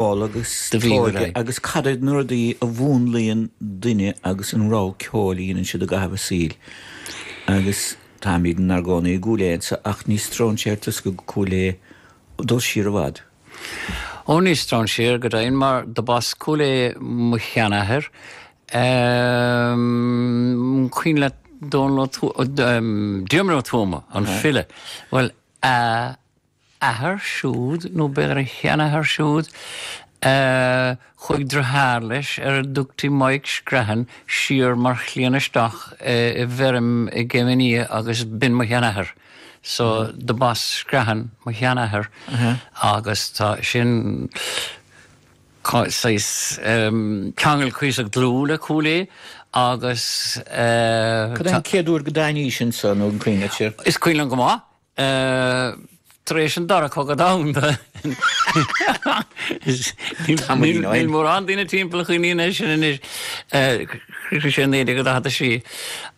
ball agus togha agus cad iad na rudaí a mhúnlaíonn duine agus an rogha ceoil a dhéanann siad i gcaitheamh a saoil agus táimid inár gcónaí i gCúil Aodha anseo ach ní stróinséir tusa go Cúil Aodha, dul siar i bhfad? Ó ní stróinséir go deimhin mar do b'as Cúil Aodha mo sheanathair, cuimhin leat Dónal Ó Tuama, Diarmuid Ó Tuama, an file, bhuel, a. athair siúd, nó b'fhéidir a sheanathair siúd, a chuaigh driotháir leis ar a dtugtaí Maidhc Screathan siar mar chliamhain isteach i bhfeirm i gCéim an Fhia agus b'in mo sheanathair. So, do b'as Screathan mo sheanathair agus tá sin, saghas, ceangal cuíosach dlúth le Cúil Aodha agus eh. Cad é an chéad uair go dtáinís anseo, nó an cuimhin leat sin? Is cuimhin liom go maith, tar éis an Dara Cogadh Domhanda. Níl mórán daoine timpeall a chuimhníonn ar sin anois. Shroich sé 1946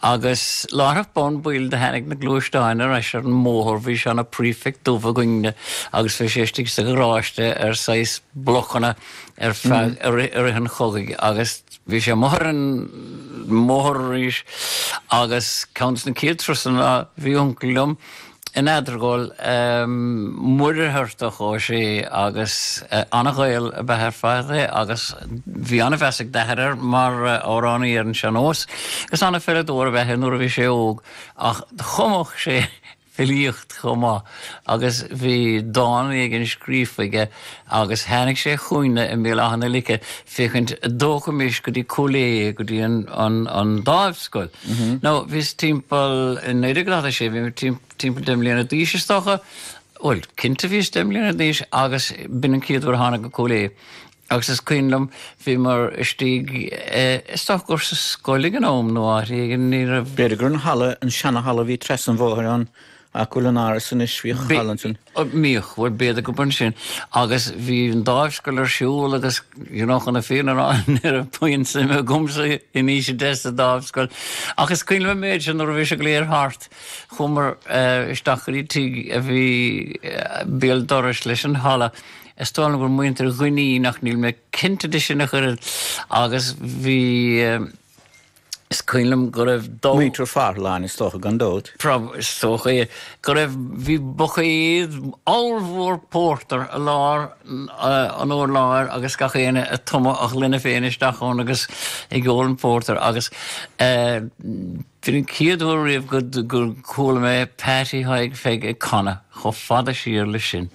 agus láithreach bonn baill do tháinig na gluaisteáin ar ais ar an mbóthar, bhí seana-Prefect dubh againne agus bhí sé istigh sa gharáiste ar saghas blocanna ar feadh, i rith an chogaidh agus. Bhí sé amuigh ar an mbóthar arís agus ceann de na chéad turasanna, bhí uncail liom in Eadargóil, Muircheartach Ó Sé, agus an-Ghael ab ea ar fad é agus bhí an-mheas ag d'athair air mar amhránaí ar an sean-nós agus an-pheileadóir ab ea é nuair a bhí sé óg ach chumadh sé filíocht chomh maith agus bhí dán éigin scríofa aige agus tháinig sé chugainne i mBéal Átha na Lice féachaint a dtógfaimis go dtí Cúil Aodha go dtí an Dáimhscoil. Now bhíos timpeall, i 1946 bhí mé timpeall deich mbliana d'aois is dócha, bhuel cinnte bhíos deich mbliana d'aois agus b'in an chéad uair a thána go Cúil Aodha. Agus is cuimhin liom, bhíomar istigh, is dócha gur sa scoil ag an am nó áit éigin, ní raibh. B'fhéidir gur an halla, an seanahalla a bhí trasna an bhóthair ann, áit go bhfuil an tÁras anois, bhíodh an halla ansin. Bhíodh, bhuel b'fhéidir gurb ansin. Agus bhí an Dáimhscoil ar siúl agus, you know, chun na fírinne a rá, ní raibh puinn suime agamsa in aois a deich sa Dáimhscoil. Ach is cuimhin liom an méid sin, nuair a bhí sé go léir thart, chuamar isteach go dtí tigh a bhí béal dorais leis an halla, Is dóigh liom gur muintir Dhuinnín ach níl mé cinnte de sin a chuir an agus bhí is cuimhin liom go raibh dó. Muintir Farrlane is dócha, gan dabht. Prob, is dócha é. Go raibh, bhí buicéad ollmhór pórtar i lár an urláir agus gach éinne ag tumadh a ghloine féin isteach ann agus ag ól an pórtar agus eh, B'in an chéad uair riamh gur chuala mé Peaití Thaidhg Pheig ag canadh chomh fada siar leis sin.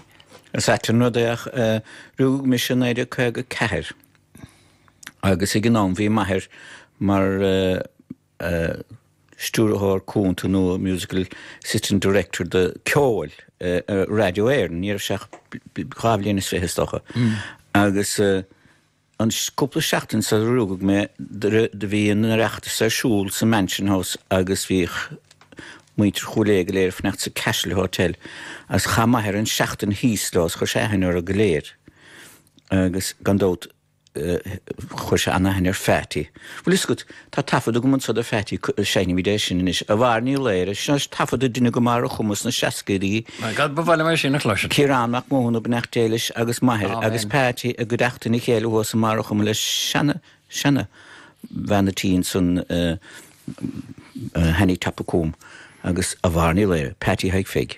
Is ait an rud é ach rugadh mise i 1954 agus ag an am bhí m'athair mar Stiúrthóir Cúnta nó Musical Assistant Director do Cheol i Radio Éireann, ní raibh sé ach dhá bhliain is fiche is dócha, agus An cúpla seachtain sular rugadh mé, do bhí an Oireachtas ar siúl sa Mansion House agus bhí muintir Chúil Aodha go léir ag fanacht sa Castle Hotel agus chaith m'athair an tseachtain thíos leo is chuir sé aithne orthu go léir agus gan dabht chuir sé an-aithne ar Pheaití. Bhfuil fhios agat, Tá taifead agam anso de Pheaití, seinnfimid é sin anois, A Mháire Ní Laoghaire, seo taifead a deineadh i mBarr a' Chuma sna seascaidí, Ciarán Mac Mathúna, Beannacht Dé leis agus m'athair agus Peaití i gcuideachtain a chéile thuas i mBarr a' Chuma le seana, seana, bhean a' tí ansan Hannie Top of Coom agus A Mháire Ní Laoghaire, Peaití Thaidhg Pheig.